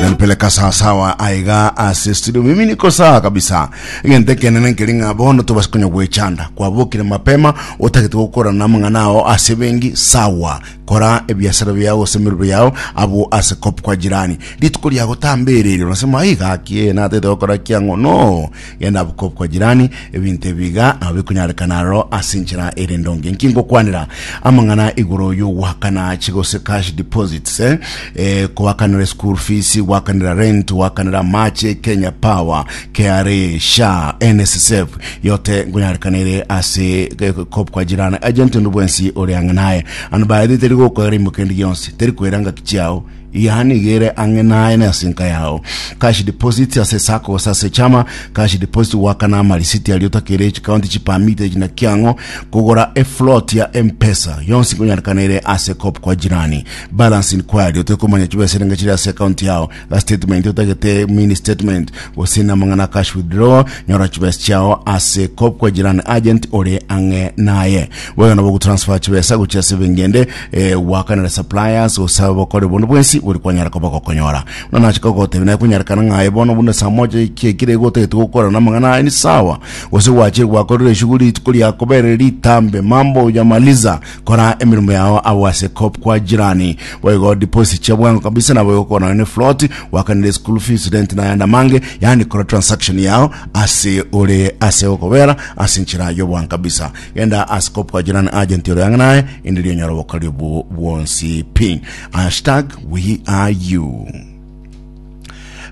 nampeleka sawasawa aiga ase studio mimi niko sawa kabisa egento ekenene nkeri ng'a bono tobasi konya gwechanda kwabokire mapema otagete gokora namang'ana ao ase bengi sawa kora ebiasara biao gose emerero yao abo ase kop kwa jirani rituko riago tambererio nasema aiga ki natete gokora kiang'o no Genda bukop kwa jirani, ebinto ebi iga nabo bikonyarekana aroro ase enchera ere endonge. Inki ngokwanera amang'ana igoro y'ogoakana chigose cash deposits, eh, eh, koakanera school fees, goakanera rent, goakanera amache, Kenya Power, KRA, SHA, NSSF, yote ngonyarekana ere ase eh, kop kwa jirani. Agent onde bwensi ore ang'e naye. Ano baete teri gokoera imokendi gionsi, teri koera ngaki chiao, Yaani igere ang'e naye na ase enka yao. Cash deposit ase esako gose ase echama. Cash deposit goakana amarisiti aria otakeire chikaunti chipermite echi naki ang'o. Kogora efloat ya M-Pesa yonsi nkonyarekana ere ase cop kwa jirani. Balance inquiry otoe komanya chibesa erenge chiri ase ekaunti yao. A statement otagete mini statement gose na amang'ana cash withdrawal nyora chibesa chiao ase cop kwa jirani agent ore ang'e naye. Boigo nabo ogotransfer chibesa gochia ase ebenki ende Eh, gwakanera suppliers gose abakore bono bwensi bori kwanyara koba gokonyora buna nache kogotebia naye konyarekana ng'aye bono buna saa moja eki ekire igo otagete gokora na amang'ana aye ni sawa gose gwachire gwakorire eshughuli rituko riakoberire ritambe mambo hujamaliza kora emirimo yao abo ase kop kwa jirani boigo deposit chia bwango kabisa nabo igokora nayo ne float gwakanire school fees rent na yanda mange yani kora transaction yao ase ore ase okobera ase nchera yobwango kabisa genda ase kopwa jirani agent ore ang'e naye inde rionyora obokori obwo bwonsi pi hashtag we are you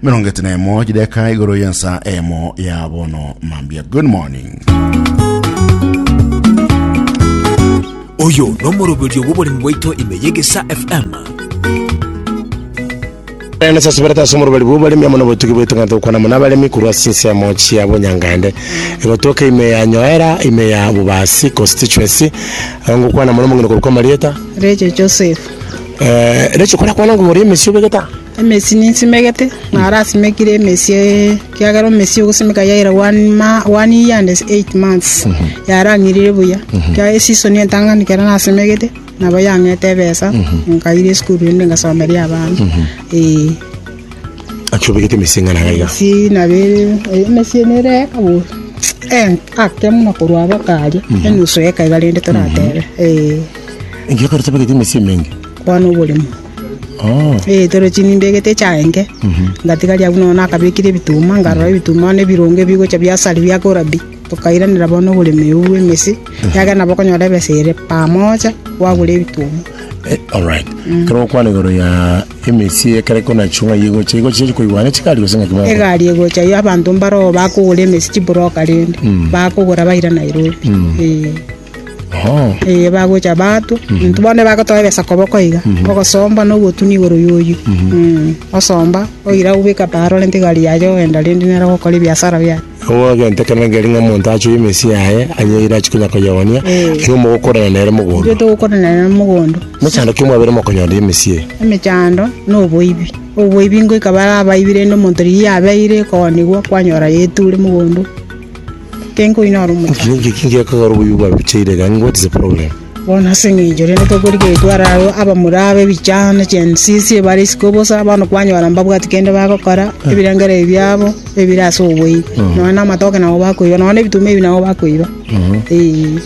mirongo ete na emo chideka igoro yensa emo ya bono mambia good morning oyo nomoroberio bw'oboremi bwaito ime yegesa fm Ekero nasasiberete ase omoruberu bw'oboremi amo nobotugi bwaito ng'a togokwana amo nabaremi korwa ase ensemo chia bonyangaende gotoka ime ya Nyoera, ime ya Bubasi constituency, aba ngokwana mono omong'ina okorokwa Marieta. Rachel Joseph. Eh, Rachel korakwana ng'a oria emesi obegete aa? Emesi ninsimegete, naro asimekire emesi eh, kiagera omesi ogosimeka yaira one, ma, one year and eight months yarang'irire buya. Kiagera esisoni entang'ani kera nasimegete Nabo yang'ete ebesa, nkaira esukuru ende ngasomeria abana, ee. Naki obegete emesi eng'ana iga iga? Emesi nabo ere, emesi ene ere eka bono, eh, ake buna korwa aba karia, enusu eka iga rende toratebe, ee. Ekiagera ekero otabegete emesi emenge? Kwana oboremo. Oh. Eh, toro chini mbegete echaenke, ngatigaria abwo nonya nakabekire ebituma, nkarora ebituma bono ebironge bigocha biasari biakora pi. Tokairanera bono oboremereru bw'emesi, ekiagera nabo okonyora ebesa ere pamoja, gwagure ebituoma. Eh, alright kero okwana igoro ya emesi ekere konachio ng'a yegocha yegocha chiachi koigwana chigari gose ng'aki moko egari egocha yo abanto mbaroo bakogora emesi chiburoka rende bakogora baira nairobi Eh, oh eh, bagocha batwa intwe bono bagotoa ebesa koboko iga ogosomba na ogotunia igoro yoyio Mm, osomba oira obeka paa rorente egari yaye ogenda rende nere ogokora ebiasara biaye Nigo egento ekero nangeri ng'a omonto achoe emesii yaye, anyeire achi konya koyeonia, nigo mogokorana nere mogondo. Intwe togokorana nere mogondo. Mechando ki mwabere mokonyora emesii eye? Emechando na oboibi. Oboibi ngoika bare abaibi rende omonto riria yabeire koonigwa kwanyora yaeture mogondo. Inki nkoinyora omochando? Inki inki gekogera oboibi bwabe bochaire iga? What is the problem? Bono ase engencho eye nigo tokorigereria are abwo abamura abe ebichano ne chiensisi ebare isiko bosa, bono kwanyora mbabwati kende bagokora, ebirengererio biabo ebire ase oboibi, nonya na amatoke nabo bakoiba, nonya na ebituma ebi nabo bakoiba, eeh.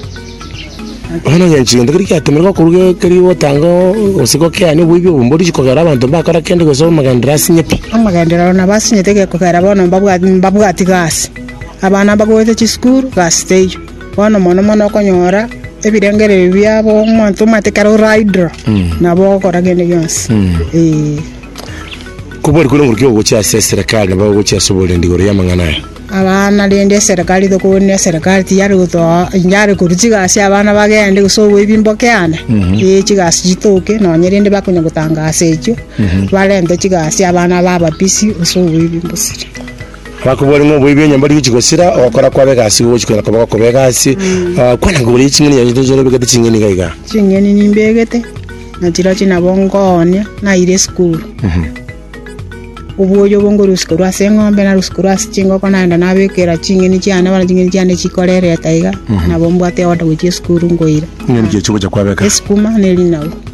Bono engencho egento keri giatomire gokorwa ge- keria ogotanga oo gose gokeani oboibi obo, mbori inche kogera abanto mbakora kende gose amagenderero asinye pi. Amagenderero ore nabo asinyete egekogera bono mbabwati, mbabwati gasi, abana mbagoete chisukuru, gasi teiyo. Bono mono mono okonyora ebirengererio biabo omonto omanyete ekero ore idle, nabo ogokora kende gionsi. Ee. Kobwari kore nguru ki ogochia ase eserekari nabo ogochia ase oborendi igoro y'amang'ana aya? Abana rende eserekari tokobonia eserekari tiyare gotoa inche are korwa chigasi abana bagende gose oboe ebimboke ande, ee chigasi chitoke nonye rende bakonya gotangasa echio, barente chigasi abana babe busy gose oboe ebimbosire. Bakobwate ng'a oboibi enyomba rigochia gosira, ogokora kwabo egasi igo gogochia koira koba gokoba egasi. Ah, kwana nkoboria ching'eni chiaye tochire obegete ching'eni iga iga. Ching'eni nimbegete, na chirochio nabo nkoonia naire esukuru. Obwoyo obo nkorusika korwa ase eng'ombe, narusia korwa ase chingoko naenda nabekera ching'eni chiane, bono ching'eni chiane chikorereta iga, nabo mbwate order gochia esukuru nkoira. Ng'eni ki echio ogocha kwabeka? Esukuma ne erinagu.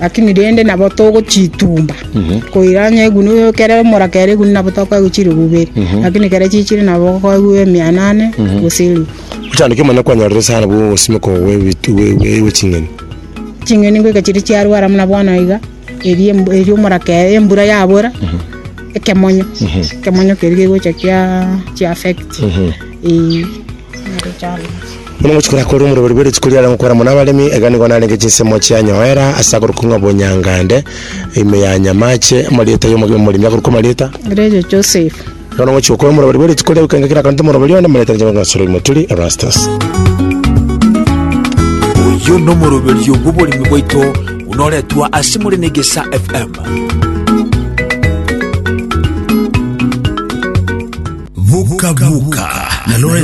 Lakini rende nabo togochitumba koira onye egunwa ekero emoraka ere egunwa nabo tokoegwa chiribu ibere lakini ekero chichire nabo okoegwa emiana ane gose eribu Otandeke mana kwanyorire sana bwo ogosimoka gwe ebitu- gwe- gwe- gwe ching'eni. ching'eni ngoika chiria chiarwara buna bono iga eria embu- eria omoraka ere embura yabora ekemonyo ekemonyo keria kegocha kia- kia affect eh. Buna mochiko ya kore omoroberi bwe rituko riare gokora mono abaremi, iga nigo narenge chinsemo chianyoera ase akorokwa ng'a Bonyangande, ime ya Nyamache, amarieta y'omogeni omoremi akorokwa amarieta. Rejo Joseph. Igo na mochiko ya kore omoroberi bwe rituko ria gokenga kera akanto omoroberi one, amarieta ninche ngokeng'a Sorogi Moturi, Erastus. Oyo nomoroberi obw'oboremi bwaito buna oretwa ase more na Egesa FM. Vuka Vuka na Lawrence